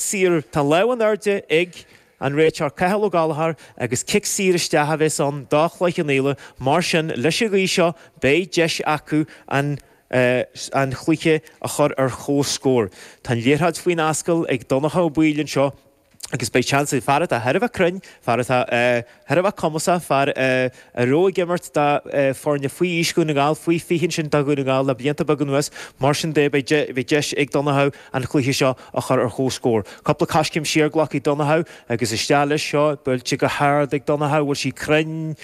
saor. Tá lámh in airde ag an réiteoir Cathal Ó Gallchóir agus cic saor isteach a bheas ann do Chloich Cheann Fhaola, mar sin leis an ghaoth seo beidh deis acu an cluiche a chur ar chomhscór. Tá an liathróid faoin ascaill ag Donncha Ó Baoill anseo agus beidh seans ag fear atá thar a bheith cruinn, fear atá. Thar a bheith cumasach, fear a raibh ag imirt do foirne faoi aois Dhún na nGall, faoi 20 ansin do Dhún na nGall, le blianta beaga anuas. Mar sin de, beidh deis ag Donncha an cluiche seo a chur ar chomhscór. Cúpla coiscéim siar, glactha ag Donncha agus isteach leis. Seo buailte go hard ag Donncha. Bhfuil sí cruinn?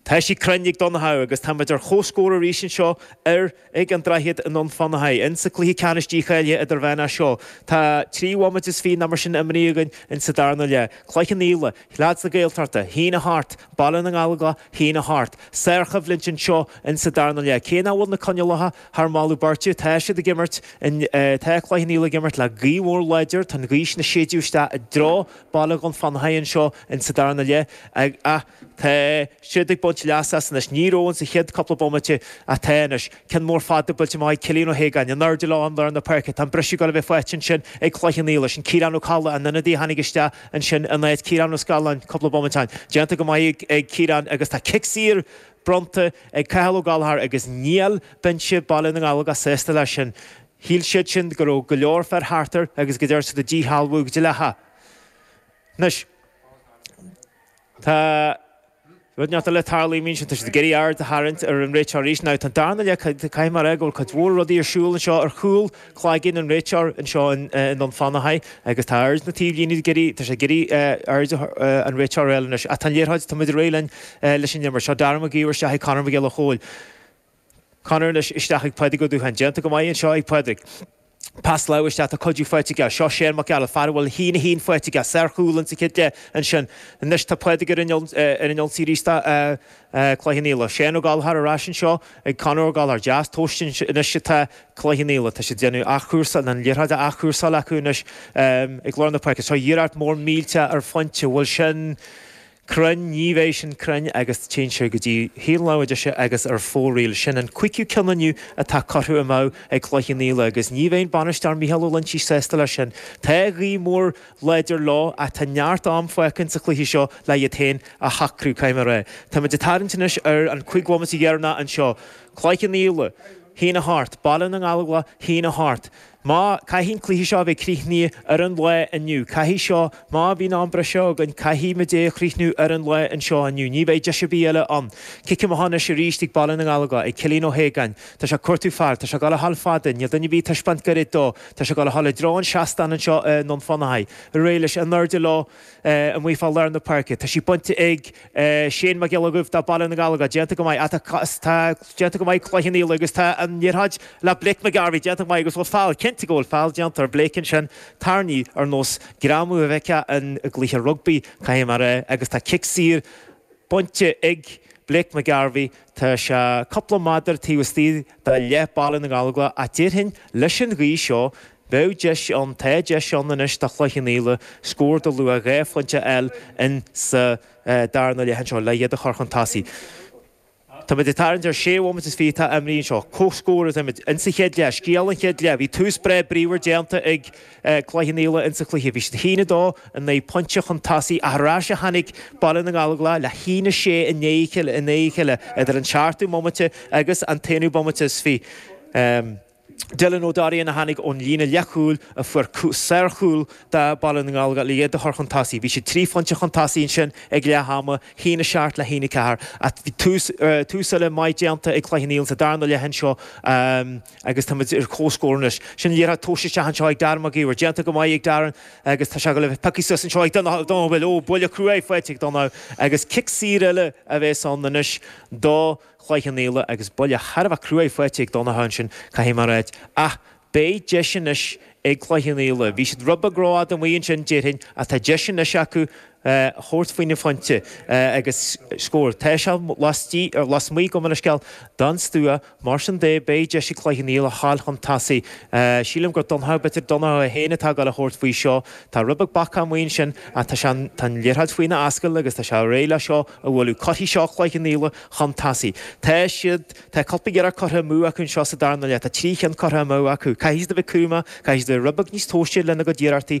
Tá sí cruinn ag Donncha agus tá muid ar chomhscór arís anseo ar. ag an droichead i nDún Fionnachaidh. Insa cluiche ceannais dícháilithe idirmheánach seo tá trí bhomaite is fiche ná mar sin imrithe againn insa darna leath, Cloich Cheann Fhaola, leads na Gaeltachta, a haon a hocht, Baile na nGallóglach, a haon a hocht. Sárchoimhlint anseo insa darna leath. Cé nach bhfuil na coinníollacha thar mholadh beirte, tá siad ag imirt in, tá Cloich Cheann Fhaola ag imirt le gaoth mhór láidir, tá an ghaoth sin ag séideadh isteach i dtreo, Baile Dhún Fionnachaidh anseo in sa darna leath ach ach tá siad ag baint leas as anois. Ní raibh in sa chéad cúpla bomaite ach tá anois. Ceann mór fada buailte amach ag Cillian Ó hAogáin, in airde leo in lár na páirce. Tá an briseadh ag dul a bheith faighte ansin ag Cloich Cheann Fhaola. Sin Ciarán Ó Colla, an ionadaí a tháinig isteach ansin in áit Ciarán Ó Scanláin cúpla bomaite ó shin. Déanta go maith ag ag Ciarán agus tá cic saor bronnta ag Cathal Ó Gallchóir agus níl binse Baile na nGallóglach sásta leis sin. Shíl siad sin go raibh go leor fir thart air agus go ndearna siad é a dhíshealbhú go dleathach. Anois, tá rud inteacht eile ag tarlú, a mhaíonn siad, tá siad ag iarraidh aird a tharraingt ar an réiteoir arís. Now, tá an darna leath, caithfidh mé a rá go bhfuil cuid mhór rudaí ar siúl anseo ar chúl cloiginn an réiteoir anseo i nDún Fionnachaidh agus tá aird na taobhlíne ag iarraidh, tá sé ag iarraidh aird an réiteora a fháil anois. Ach tá an liathróid, tá muid réidh linn leis an imirt. Seo Dara Mac Gabhair isteach ag Conor Mac Giolla Chóill. Conor anois isteach ag Pádraig Ó Dúcháin. Déanta go maith anseo ag Pádraig. Pas láimhe isteach, tá cuidiú faighte aige. Seo Seán Mac Gearailt, fear a bhfuil a haon a haon faighte aige. Sárchúl ins an chéad leath ansin. Anois tá Pádraig ar an ionsaí arís do Chloich Cheann Fhaola. Seán Ó Gallchóir ar ais anseo ag Conor Ó Gallchóir. Deas tomhaiste anois atá Cloich Cheann Fhaola. Tá siad ag déanamh athchúrsáil, an liathróid á athchúrsáil acu anois ag lár na páirce. Seo iarracht mhór mhillteach ar phointe. Bhfuil sin. cruinn, ní bheidh sin cruinn agus téann sé go dtí taobh na láimhe deise agus ar fóraoil sin an cúigiú ceann inniu atá curtha amú ag Cloich Cheann Fhaola agus ní bheidh an Bainisteoir Mícheál Ó Loinsigh sásta leis sin. Tá gaoth mhór láidir leo ach tá neart ama fágtha ins an chluiche seo le iad féin a shocrú cá mbeidh réidh. Táimid ag tarraingt anois ar an cúig bhomaite dheireanach anseo. Cloich Cheann Fhaola, a haon a hocht, Baile na nGallóglach, a haon a hocht. Mar caithfidh an cluiche seo a bheith críochnaithe ar an lá inniu, caithfidh seo, má bhíonn am breise againn, caithfimid é a chríochnú ar an lá anseo inniu. Ní bheidh deis ar bith eile ann. Cic amach anois arís ag Baile na nGallóglach, ag Cillín Ó hAogáin. Tá sé ag cuartú fear. Tá sé ag dul a ghabháil fada. Níl duine ar bith ag taispeáint goirid dó. Tá sé ag dul a ghabháil i dtreo an seastáin anseo i nDún Fionnachaidh. Réidh leis. In airde leo amuigh fá lár na páirce. Tá sí bainte ag. Séan Mac Giolla Dhuibh, de Baile na nGallóglach, déanta go maith, ach tá déanta go maith ag Cloich Cheann Fhaola agus tá an liathróid le Blake McGarvey déanta go maith agus bhfuil feall, cinnte go bhfuil feall déanta ar Blake ansin, tarraingíodh ar nós greamú a bhfeicfeá i gcluiche rugbaí, caithfidh mé a rá, agus tá cic saor bainte ag Blake McGarvey, tá sé cúpla méadar taobh istigh de leath Baile na nGallóglach déarfainn leis an ghaoth seo, Bheadh deis ann, tá deis ann anois do Chloich Cheann Fhaola scór de luach dhá phointe a fháil in sa darna leath anseo le iad a chur chun tosaigh. Táimid ag tarraingt ar sé bhomaite is fiche atá imeartha anseo. Comhscór atáimid in sa chéad leath, scéal an chéad leath. Bhí tús breá bríomhar déanta ag Cloich Cheann Fhaola in sa chluiche. Bhí siad haon a dó in aghaidh pointe chun tosaigh ach ar ais a tháinig Baile na nGallóglach le haon a sé i ndiaidh a chéile idir an seachtú bomaite agus an t-aonú bomaite is fiche. Dylan Ó Doirín, a tháinig ón líne leathchúil a fuair sárchúl do Baile na nGallóglach, le iad a chur chun tosaigh. Bhí siad trí phointe chun tosaigh ansin ag leath ama, haon a seacht le haon a ceathair, ach bhí tús eile maith déanta ag Cloich Cheann Fhaola sa darna leath anseo agus táimid ar comhscór anois. Sin an liathróid tomhaiste isteach anseo ag Darren Mac Íomhair. Déanta go maith ag Darren agus tá sé pioctha suas anseo ag Donnchadh Ó Baoill. Ó, buille cruaidh faighte ag Donnchadh agus cic saor eile a bheas ann anois do Chloich Cheann Fhaola agus buille thar a bheith cruaidh faighte ag Donnchadh ansin, caithfidh mé a ráidht, ach beidh deis anois ag Cloich Cheann Fhaola, bhí siad rud beag rófhada amuigh ansin, déarfainn, ach tá deis anois acu a thabhairt faoina phointe agus scór. Tá sé lasmuigh acu mar a scéal den stua, mar sin de, beidh deis ag Cloich Cheann Fhaola a ghabháil chun tosaigh. Sílim gur Donnchadh, b'fhéidir Donnchadh féin atá ag dul a thabhairt faoi seo. Tá rud beag bacach amuigh ansin, ach tá an liathróid faoina ascaill agus tá sé réidh le seo a bhualadh. Cuirfidh seo Cloich Cheann Fhaola chun tosaigh. Tá siad, tá cúpla iarracht curtha amú acu anseo sa darna leath, tá trí cheann curtha amú acu. Caithfidh siad a bheith cúramach, caithfidh siad a bheith rud beag níos tomhaiste lena gcuid iarrachtaí.